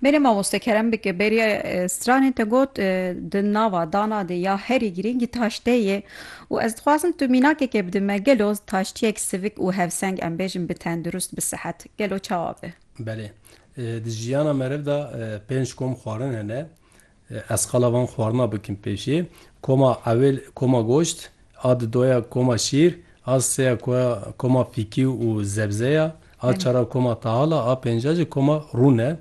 Bêne mamoste kerem bike bêriya stranê te got di nava dana de ya herî girîngî taştê yê û ez dixwazim tu mînakeke bide me gelo taştiyek sivik û hevseng em bêjin bi tendurist bi sihet gelo çawa be? Belê. Di jiyana meriv de pênc kom xwarin hene. Ez qala van xwarina bikim pêşê, koma ewêl koma goşt, a di doya koma şîr, a seya koya koma fîkî û zebze ya, a çar a koma tahal a, a pênc a jî koma rûn e.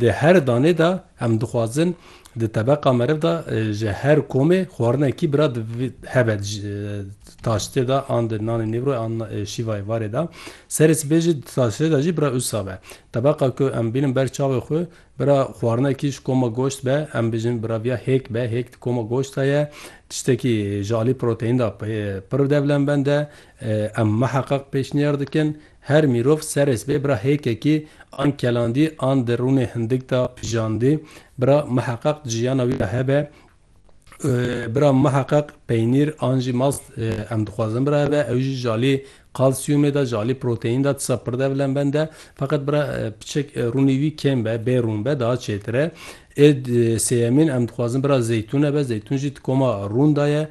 Di her danê de em dixwazin di tebeqa meriv de ji her komê xwarinekî bira hebe di taştê de an di nanê nîvrûyê an şîvayê varê de. Serê sibê jî di taştê de jî bira usa be. Tebeqa ku em bînin ber çavê xwe Bira xwarinekî ji koma goşt be, em bijin bira viya hêk be, hêk di koma goşt de ye, tiştekî ji alî proteîn de pir devlemend e. Em miheqeq pêşniyar dikin her mîrov serês bê bira hêkekî an kelandî an di rûnê hindik de pijandî bira miheqeq di jiyana wî de hebe. Bira miheqeq peynîr an jî mast em dixwazin bira eve ew jî jalê kalsiyumê de jalê proteîn de tisa pirde vilen bende feqet bira piçek rûnî vî kêm be bê rûn be daha çêtire ê sêyemîn em dixwazin bira zeytûn eve zeytûn jî tikoma rûn de ye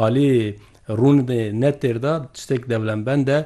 alê rûn ne têr de çitek devilen bende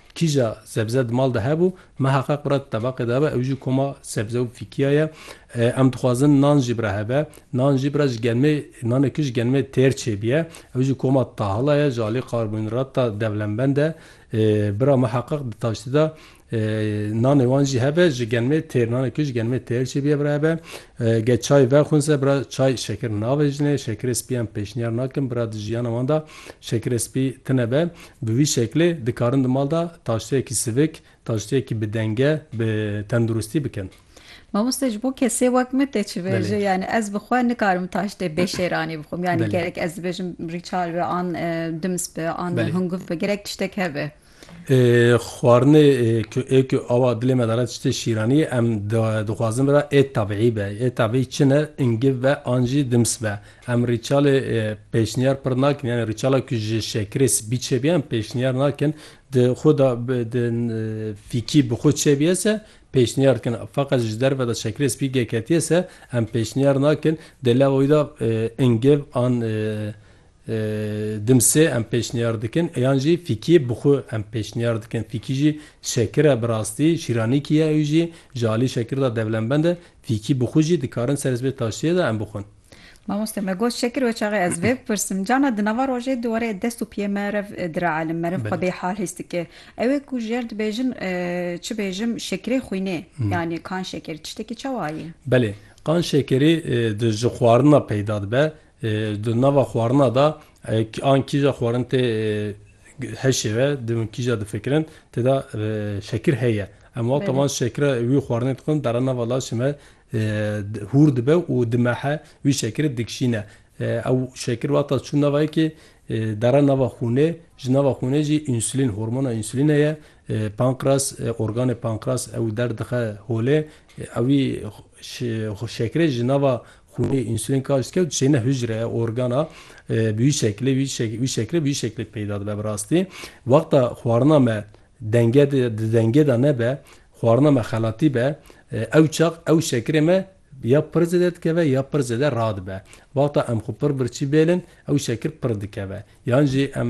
Kîja sebze di mal de hebû, meha qe qura di tebaqê de be, ew jî koma sebze û fîkîya ye. Em dixwazin nan jî bira hebe. Nan jî bira ji genimê, nanê ku ji genimê têr çêbîye, ew jî koma tahila ye, ji alî karbonhîdrata devlembend e. Bira meha qe di taştî de nanê wan jî hebe, ji genimê têr, nanê ku ji genimê têr çêbîye bira hebe. Ge çay vexwinse, bira çay şekir navejinê, şekirê spî em pêşniyar nakin, bira di jiyana wan de şekirê spî tine be. Bi vî şeklê dikarin di mal de taşteyekî sivik, taşteyekî bi denge, bi tenduristî bikin. Mamoste ji bo kesê wek min tê çivêje yanî ez bi xwe nikarim taştê bê şêranî bixwim yanî gerek ez dibêjim rîçal be an dims be an hingûv be gerek tiştek hebe. Xwarinê ku ê ku awa dilê me de re tiştê şîranî ye em dixwazin bira ê tebîî be. Ê tebîî çi ne hingûv be an jî dims be. Em rîçalê pêşniyar pir nakin yanî rîçala ku ji şekirê spî çêbî em pêşniyar nakin di xwe de di fîkî bi xwe çêbîye se pêşniyar dikin feqet ji derve de şekirê spî geketiye se em pêşniyar nakin di lava wî de ingêv an dimsê em pêşniyar dikin yan jî fîkî bi xwe em pêşniyar dikin fîkî jî şekir e bi rastî şîranîkî ye ew jî ji alî şekir de devlembend e fîkî bi xwe jî dikarin serê sibê taştiyê de em bixwin. Mamoste me got şekir we çaxê ez vê bipirsim cana di nava rojê di were dest û piyê me rev diraelim me rev xwe bê hal his dike ew ê ku ji yer dibêjim çi bêjim şekirê xwînê yanî kan şeker tiştekî çawa ye? Belê kan şekerî di ji xwarina peyda dibe di nava xwarina da an kîja xwarin tê heşê ve di min kîja difikirin tê de şekir heye em wexta wan şekira wî xwarinê dixwin dere nava laşê me Hûr dibe û di mehe wî şekirê dikişîne. Ew şekir wexta çû nava yekê dere nava xûnê, ji nava xûnê jî însulîn, hormona însulîne ye, pankras, organê pankras ew der dixe holê. Ewî şekirê ji nava xûnê însulîn karş dike û dişêne hicre, organa. Bi wî şekilê wî şekirê bi wî şekilê peyda dibe bi rastî. Wexta xwarina me denge di dengê de nebe, Xwarina me xelatî be, ew çax ew şekirê me ya pir zêde dikeve ya pir zêde radibe. Wexta em xwe pir birçî bêlin ew şekir pir dikeve. Yan jî em